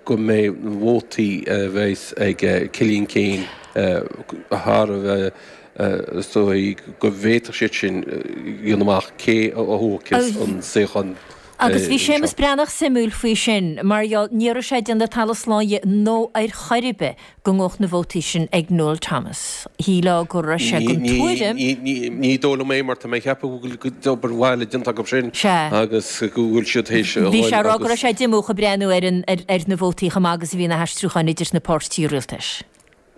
go mbeidh na vótaí a bheas ag Cillian Keane thar a bheith, is dóigh go bhféadfadh siad sin dhéanamh amach cé a thógfaidh an suíochán. Agus bhí Séamus Breathnach suimiúil faoi sin mar gheall, ní raibh sé ag déanamh talamh slán de nó ar chor ar bith, go ngabhfadh na vótaí sin ag Noel Thomas. Shílfeá go raibh sé den tuairim. Ní dóigh liom é, mar tá mé a cheapadh go bhfuil obair mhaith déanta acu sin agus go bhfuil siad théis a dhul agus. Bhí sé a rá go raibh sé díomúch ag breathnú ar na vótaí chomh maith agus a bhí na haistriúcháin idir na páirtithe rialtais.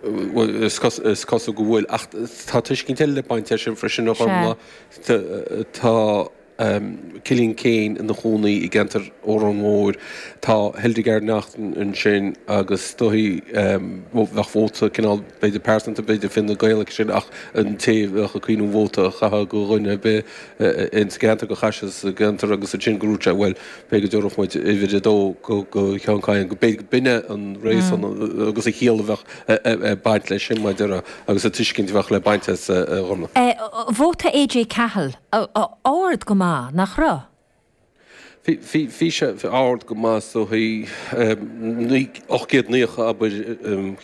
Bhuel, is cosúil go bhfuil, ach tá tuiscint eile ag baint leis sin freisin, a Ghormlaith. Tá. Cillian Keane ina chónaí i gceantar Órán Mór. Tá Hildegarde Naughton ansin agus is dóigh bheadh vóta cineál b'fhéidir pearsanta, b'fhéidir Fine Gael aici sin ach an té a bheadh ag cuimhniú vóta a chaitheamh go dhuine ar bith in sa gceantar, gur chaith sé sa gceantar agus ansin gur úirt sé bhuel, b'fhéidir go dtabharfadh muid uimhir a dó go Sheán Kyne, b'fhéidir gurb in é an réasún agus an chiall a bheadh. ag baint leis sin maidir le agus an tuiscint a bheadh le baint as, a Ghormlaith. Vóta AJ Cahill, ard go maith, nach raibh? Bhí sé ard go maith sa chaoi, naoi, ocht gcéad naocha, abair,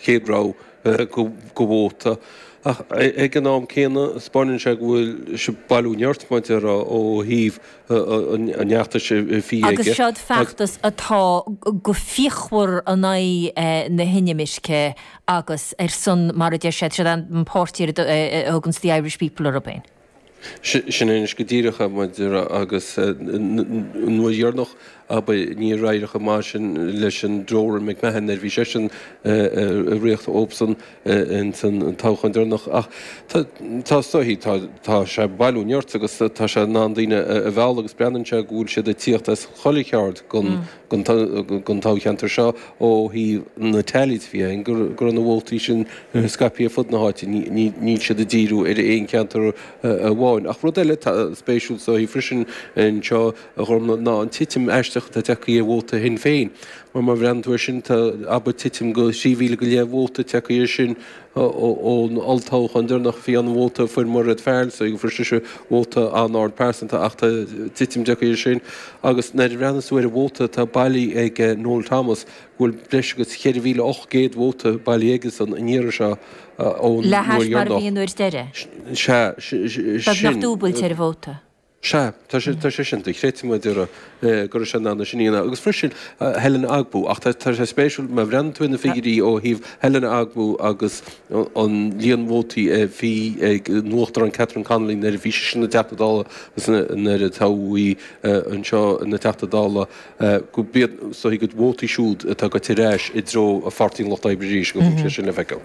chéad rogha de vóta. Ach ag an am céanna 'spáineann sé go bhfuil bailiú nirt maidir le ó thaobh Agus seo'd feachtas atá go fíochmhar in aghaidh na hinimirce agus ar son, mar a deir siad, seo'd an páirtí a thuganns 'the Irish people' orthu féin. Sin é anois go díreach é, maidir le, agus an uair dheireanach abair, níor éirigh chomh maith sin leis an Doran McMahon, a bhí seisean ag rith dóibhsean ins an toghchán deireanach. Ach tá is dóichí, tá sé ag bailiú nirt agus tá sé in ann daoine a mhealladh agus breathnaíonn sé go bhfuil siad ag tíocht as chuile cheard den toghcheantar seo ó thaobh na teailí de. Fiú amháin go raibh na vótaí sin scaipthe ar fud na háite, níl siad ag díriú ar aon cheantar amháin. Ach rud eile atá spéisiúil, is dóichí freisin anseo a Ghormlaith, ná an titim aisteach atá tagtha ar vóta Shinn Féin. Mar má bhreathnaíonn tú air sin, tá, abair, titim go thrí mhíle go leith vóta tagtha air sin ón olltoghchán deireanach. Bhí an vóta a fuair Mairéad Farrell, so fuair sise vóta an-ard pearsanta ach tá titim tagtha air sin. Agus nuair a bhreathnaíos tú ar an vóta atá bailithe ag Noel Thomas, go bhfuil breis agus 4,800 vóta bailithe aigesean an iarraidh seo ón uair dheireanach. Le hais mar a bhí an uair deiridh? Sea, sin. Beagnach dúbailt ar an vóta. Sea, tá sé, tá sé sin, dochreidte maidir le, eh, go raibh sé in ann é sin a dhéanamh. Agus freisin, eh, Helen Ogbu, ach tá, tá sé spéisiúil, má bhreathnaíonn tú ar na figiuirí ó thaobh Helen Ogbu agus an líon vótaí a bhí ag an Uachtarán Catherine Connolly nuair a bhí sise ina Teachta Dála agus nuair a toghadh í, eh, anseo ina Teachta Dála, go mbeidh a gcuid vótaí siúd atá gaibhte ar ais i dtreo Pháirtí an Lucht Oibre arís, go mbeidh sé sin le feiceáil.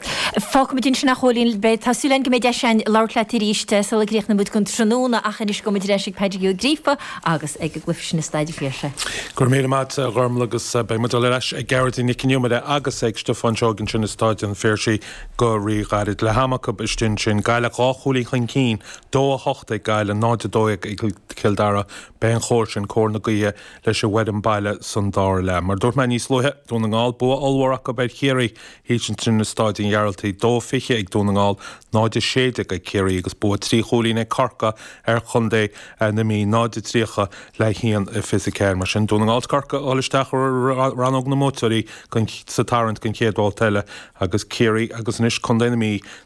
Fágfaimid ansin nach bhfuil aon rud. Tá súil againn go mbeidh deis againn labhairt leat arís sula gcríochnaímid don tráthnóna ach anois gabhaimid ar ais ag Pádraic Ó Gríofa agus ag an gcluiche sin i Staid an Phiarsaigh. Go raibh míle maith agat, a Ghormfhlaith, agus beidh muid ar ais ag Gearóidín Nic an Iomaire agus ag Stiofán Seoighe ansin i Staid an Phiarsaigh go ríghairid. Leath-am acu istigh ansin, Gaillimh dhá chúilín chun cinn, 2 8 ag Gaillimh, 0 12 ag Cill Dara, Beidh an chóir sin, cóir na gaoithe leis an bhfoireann baile san dara leath. Mar a dúirt mé níos luaithe, Dún na nGall, bua ollmhór acu ar Chiarraí, thíos ansin i Staid an Ghearaltaigh, 2-20 ag Dún na nGall, 0-16 ag Ciarraí agus bua trí chúilín ag Corcaigh ar Chontae na Mí, 0-30 le 1-24. Mar sin, Dún na nGall 's Corcaigh a dhul isteach i rannóg na mbuaiteoirí sa tarraingt don chéad bhabhta eile agus Ciarraí agus anois Contae na Mí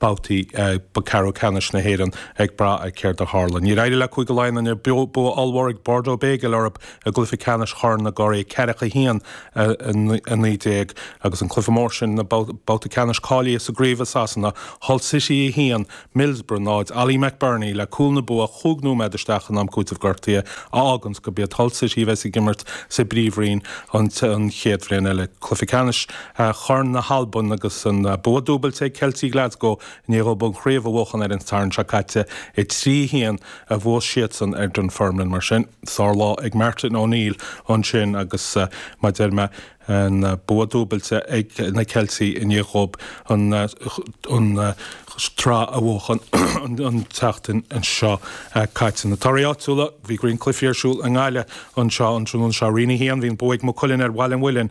babhtaí ba ceathrú ceannais na hÉireann ag brath ar céard a tharla. Níor éirigh le Cúige Laighean inniu bua ollmhór ag Bordeaux Bègles orthu i gcluiche ceannais Chorn na gCuradh, 41, 19, agus an cluiche mór sin na babhta ceannais cáilithe sa gcraobh i Sasana, Hull City 1, Middlesbrough 0. Ollie McBurnie le cúl na bua chúig nóiméad isteach in am cúitimh gortaithe a fháganns gurb iad Hull City a bheas ag imirt sa bpríomhroinn an chéad bhliain eile. Cluiche ceannais. Chorn na hAlban agus an bua dúbailte ag Ceiltigh Glasgow i ndiaidh dhóibh an chraobh a bhuachan ar an Satharn seo caite. 3-1 a bhuaigh siadsan ar Dunfermline mar sin. Sárlá ag Martin O'Neill ansin agus, mar a deir mé, an bua dúbailte ag na Ceiltigh i ndiaidh dhóibh an tsraith a bhuachan an tseachtain seo caite. Na torthaí áitiúla, bhí roinnt cluichí ar siúl i nGaillimh anseo an tráthnóna seo. Roinn 1, bhí an bua ag Maigh Cuilinn ar Bhaile an Mhuilinn.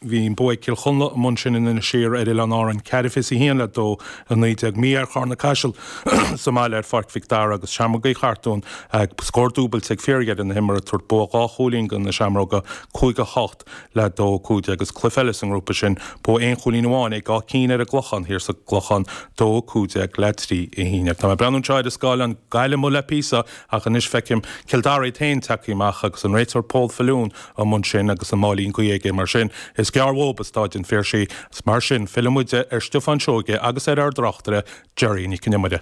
Bhí an bua ag Cill Chonla amuigh ansin in Inis Oírr ar Oileáin Árann ceathair fiche a haon le dó a naoi déag, mí-ádh ar Charna Caiseal sa mbaile ar Pháirc Mhic Dara agus Seamrógaí Chartúin a scór dúbailte ag fíordheireadh na himeartha ag tabhairt bua dhá chúilín do na Seamróga, cúig a hocht le dó a cúig déag is cluiche eile sa ngrúpa sin, bua aon chúilín amháin ag Áth Cinn ar an gClochán thiar sa gClochán, dó a cúig déag le trí a haon dhéag. Tá mé ag breathnú anseo ar an scáileán, Gaillimh amuigh le píosa ach anois feicim Cill Dara iad féin tagtha amach agus an réiteoir Paul Faloon amuigh ansin agus an máilín caite aige mar sin, is gearr dhóibh i Staid an Phiarsaigh, agus mar sin filleann muide ar Stiofán Seoighe agus ar ár dtráchtaire, Gearóidín Nic an Iomaire.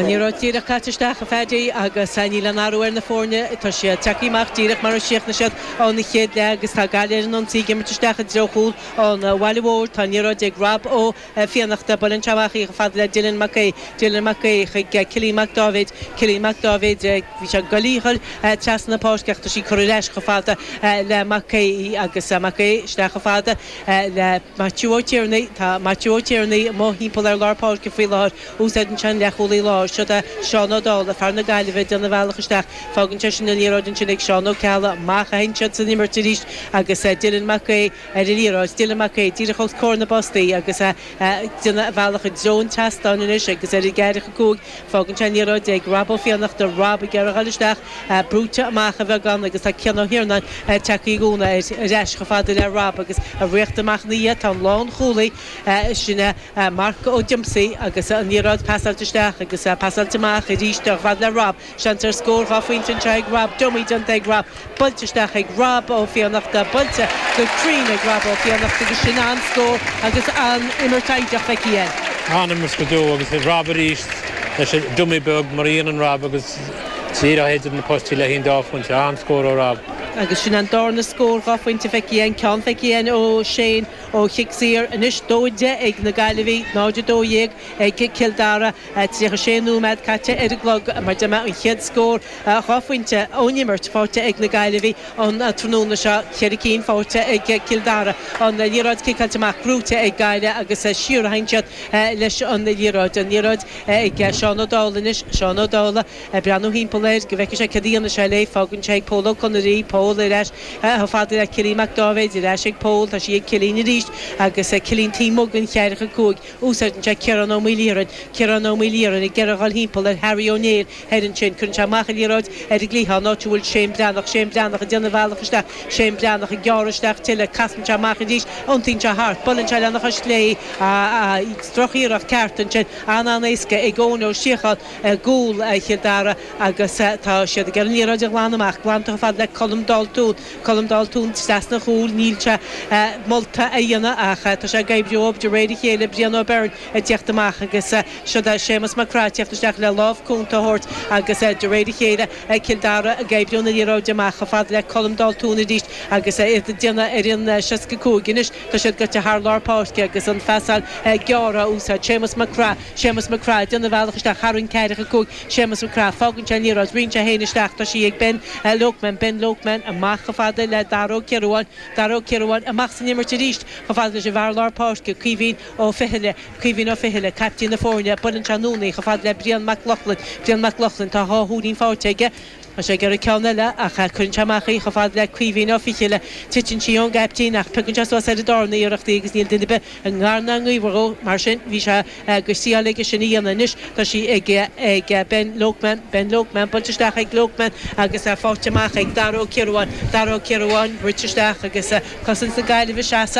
Liathróid díreach caite isteach, a Phaddy, agus níl aon athrú ar na foirne, tá siad tagtha amach díreach mar a chríochnaigh siad an chéad leath agus tá Gaillimh ar an ionsaí ag imirt isteach i dtreo chúl an bhaile mhóir, tá an liathróid ag Rob Ó. Fiannachta, Buaileann sé amach í chomh fada le Dylan Mac Aoidh, Dylan Mac Aoidh chuig Cillian Mac Dáibhéid, Cillian Mac Dáibhéid, bhí sé go lúfar trasna na páirce ach tá sí curtha ar ais chomh fada le Mac Aoidh agus Mac Aoidh isteach chomh fada le Maitiú Ó Tiarnaigh, tá Maitiú Ó Tiarnaigh amuigh thimpeall ar lár páirce faoi láthair, úsáideann sé an leathchúlaí láir, siod é Seán Ó Dálaigh, fear na Gaillimhe ag déanamh a bhealach isteach, fágann sé sin an liathróid ansin ag Seán Ó Ceallaigh, amach a théann siad san imirt arís agus Dylan Mac Aoidh, ar an liathróid. Dylan Mac Aoidh díreach os comhair na bpostaí agus é ag déanamh a bhealach i dtreo an tseastáin anois agus ar an gceathracha cúig. Fágann sé an liathróid ag Rob Ó Fiannachta, Rob ag iarraidh a dhul isteach, brúite amach beagán agus tá Cian Ó hIarnáin ag teacht i gcúnamh ar ais chomh fada le Rob agus ag tíocht amach ina dhiaidh. Tá an lánchúlaí sin Marc Ó Díomasaigh agus an liathróid pasáilte isteach agus pasáilte amach arís chomh fada le Rob. Seans ar scór dhá phointe anseo ag Rob, dummy déanta ag Rob, buailte isteach ag Rob Ó Fiannachta, buailte go cruinn ag Rob Ó Fiannachta agus sin an-scór agus an-imirt fhoighdeach feicthe againn. An-imirt go deo agus Rob arís leis an dummy beag mar a dhéanann Rob agus díreach idir na postaí le haghaidh an dá phointe, an-scór ó Rob. Agus sin an dárna scór dhá phointe feicthe againn, ceann feicthe againn ó Shane ó chic saor, anois 2-10 ag na Gaillimhigh, 0-12. ag Cill Dara. Tríocha sé nóiméad caite ar an gclog mar a deir mé an chéad scór dhá phointe ón imirt faighte ag na Gaillimhigh an tráthnóna seo, ceithre cinn faighte ag Cill Dara. An liathróid ciceáilte amach gnóite ag Gaillimh agus siar a théann siad leis an liathróid. An liathróid ag Seán Ó Dálaigh anois, Seán Ó Dálaigh ag breathnú thimpeall air go bhfeicfidh sé céard a dhéanfaidh sé léi. Fágann sé ag Pól Ó Conaire, Pól ar ais chomh fada le Cillín Mac Dáibhéid, ar ais ag Pól, tá sí ag Cillín arís agus Cillín taobh amuigh den cheathracha cúig. Úsáideann sé Ciarán Ó Maoilchiaráin, Ciarán Ó Maoilchiaráin, ag iarraidh a dhul thimpeall ar Harry Ó Néill thoir ansin. Cuireann sé amach an liathróid ar an gcliathán, áit a bhfuil Shane Breathnach, Shane Breathnach ag déanamh a bhealach isteach, Shane Breathnach ag gearradh isteach tuilleadh, casann sé amach arís, iontaíonn sé thart, buaileann sé lena chois chlé, drochiarracht cheart ansin, an-an-éasca ag Eoin Ó Síocháin i gcúl Chill Dara agus tá siad ag iarraidh an liathróid a ghlanadh amach, glanta chomh fada le Colm Daltún. Colm Daltún, trasna an chúil, Níl sé molta a dhéanamh ach tá sé ag oibriú de réir a chéile, Brian Ó Beirn ag tíocht amach agus siod é Séamus Mac Craith ag tíocht isteach le lámh cúnta a thabhairt agus de réir a chéile Cill Dara ag oibriú na liathróide amach chomh fada le Colm Daltún arís agus iad ag déanamh ar an seasca cúig. Anois tá siad gaibhte thar lár páirce agus an phasáil gearr á úsáid, Séamus Mac Craith, Séamus Mac Craith ag déanamh a bhealach isteach thar an gceathracha cúig, Séamus Mac Craith, Fágann sé an liathróid, ritheann sé féin isteach, tá sí ag Ben Loakman, Ben Loakman, amach chomh fada le Dara Ó Ciarubháin, Dara Ó Ciarubháin, amach san imirt arís chomh fada leis an bhfear lár páirce, Caoimhín Ó Fithcheallaigh, Caoimhín Ó Fithcheallaigh, caiptín na foirne, buaileann sé anonn í chomh fada le Brian Mac Lochlainn, Brian Mac Lochlainn, tá dhá chúilín faighte aige, Tá sé ag iarraidh ceann eile, ach cuireann sé amach í chomh fada le Caoimhín Ó Fichille. Titeann sí ón gcaiptín, ach piocann sé suas ar an darna iarracht í, agus níl duine ar bith i ngar ná i ngaobhar dhó. Mar sin, bhí sé éasáilte aige sin a dhéanamh. Anois, tá sí ag ag Ben Loakman, Ben Loakman, buailte isteach ag Loakman, agus fáighte amach ag Dara Ó Ciaruáin, Dara Ó Ciaruáin, brúite isteach, agus cosaint na Gaillimhe seasta.